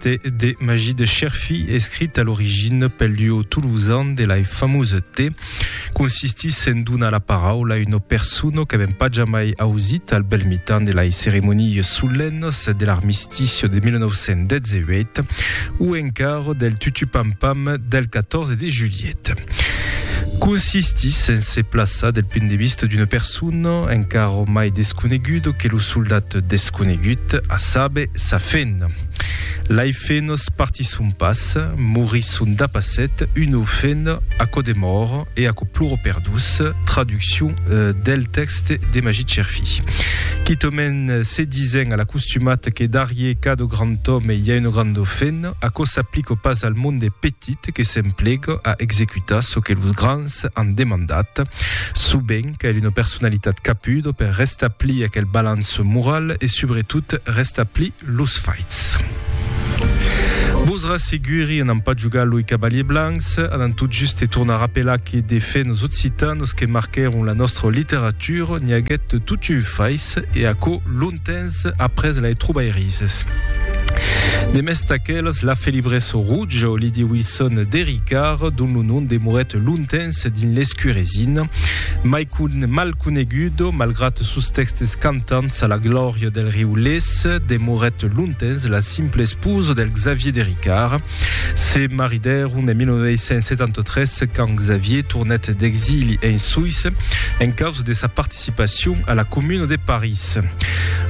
Te de Magí de Cherfí, escrit a l'origina pel duo tolosan de lai famosa Te, consistís en donar la paraula a una persona qu'avèm pas jamai ausit al bèl mitan de lai ceremonias solennas de l'armistici de 1918 o encara del tutupampam del 14 de julhet. Consistís en se plaçar del punt de vista d'una persona encara mai desconeguda que lo soldat desconegut, a saber, sa fena. Lai fenos partisson pas, morisson dapasset, uno fen aquò de mòr e aquò ploro per dus, traduccion del tèxte de Magit Cherfi. Quitòmen se disen a l'acostumat que darrier cada grand òme i a un grand fen, aquò s'aplica pas al monde petit que s'emplega a executar çò que los grands an demandat. Subent cal una personalitat capuda per restablir aquel balanç moral e subretot restablir Los faits. Vos rasseguri, anam pas jogar loi cavaliers blancs, anam tot juste tornar apelar que de fait nos occitanos que marquèron la nostra literatura n'i aguèt toti un fais e aquò longtemps après lai trobairises. De mès d'aquelas, la felibresa rouja o Lydie Wilson de Ricard, dont lo nom demorèt longtemps dins l'escuresina, mai mal conegudo malgrat sos tèxtes cantants, Tans a la glòria del riu Lés, demorèt longtemps la simple esposa del Xavier de Ricard. Se maridèron en 1973 quand Xavier tornèt d'exili en Suïssa en causa de sa participacion a la Comuna de París.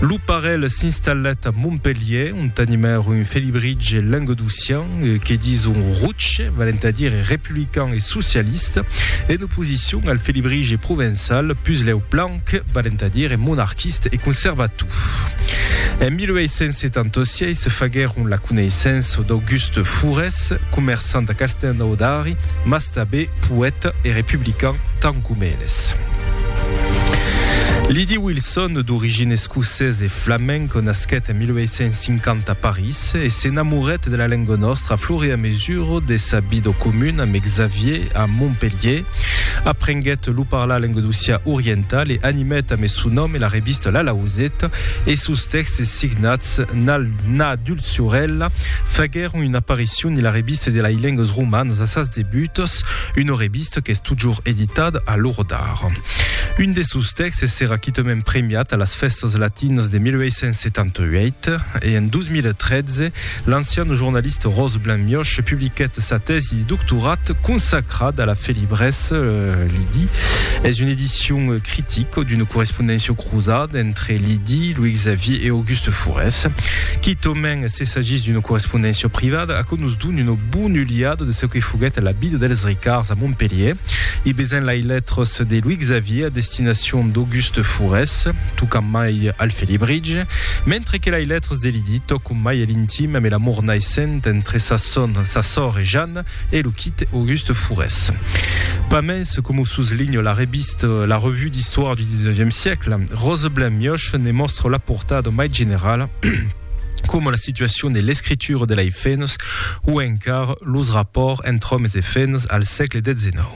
Lo parelh s'installèt a Montpelhièr ont animèron un felibritge languedocian que dison rouche, valent a dire republican e socialista, en oposicion al felibritge provençal, puslèu plan que valent a dire monarquiste e conservatou. En 1876 se faguèron la coneissença d'Auguste Fourès, comerçant a Castelnaudari, mas tabé poèta e republican tant com eles. Lydie Wilson, d'origine escocesa e flamenca, nasquèt en 1850 a París e s'enamorèt de la lenga nòstra a flor e a mesura de sa vida comuna amb Xavier a Montpelhier, Aprenguèt lo parlar languedocià oriental e animèt amé son nom e la revista La Lauseta e sos tèxtes signats Nal Na Dulciorèla faguèron una aparicion en la revista de lai lengues romanas a sas debuts, una revista qu'es totjorn editada a l'ora d'ara. Un de sos tèxtes serà quitament premiat a las Fèstas Latinas de 1878 e en 2013 L'ancian jornalista Ros Blanc Mioch publiquèt sa tèsi de doctorat consacrada a la felibrès, Lidi. Es una edicion critica d'una correspondéncia cruzada entre Lidi, Louis Xavier e Auguste Fourès. Quitament s'essagís d'una correspondéncia privada, aquò nos dona una bona uliada de çò que foguèt la vida dels Ricards a Montpelhièr. I besèm lai lètras de Louis Xavier a destinacion d'Auguste Fourès, tocant mai al felibritge, mentre que lai lètras de Lidi tòcon Mai e l'intim ame l'amor naissent entre sa son, sa sòr e Jan e lo quit Auguste Fourès. Pas mens, com o suslinho la revist La Revue d'Histoire du XIXe siècle, Roseblin Mioche ne mòstre la portada mai generala coma la situacion de l'escritura de lei fèns o encara los rapòrts entre òmes e fèns al sègle XIX.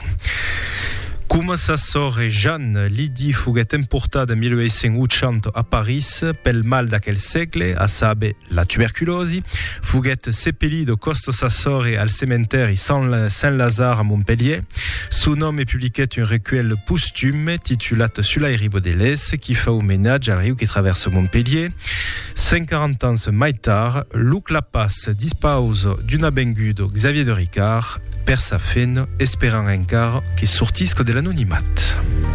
Coma sa sòr e Jan, Lydie foguèt emportada en 1880 a París, Ais, pel mal d'aquel sègle, a saber, la tuberculòsi, foguèt sepelit au Coste Sassore al cementèri Saint-Lazare a Montpelhièr. Son òme publiquèt un recuèlh postume titulat Sul airi bodelés qui fa omenatge al riu qui travèrsa Montpelhièr. 140 ans mai tard, lo Clapàs dispausa d'una benguda Xavier de Ricard per sa feina, esperant encara que sortisca de l'anonimat.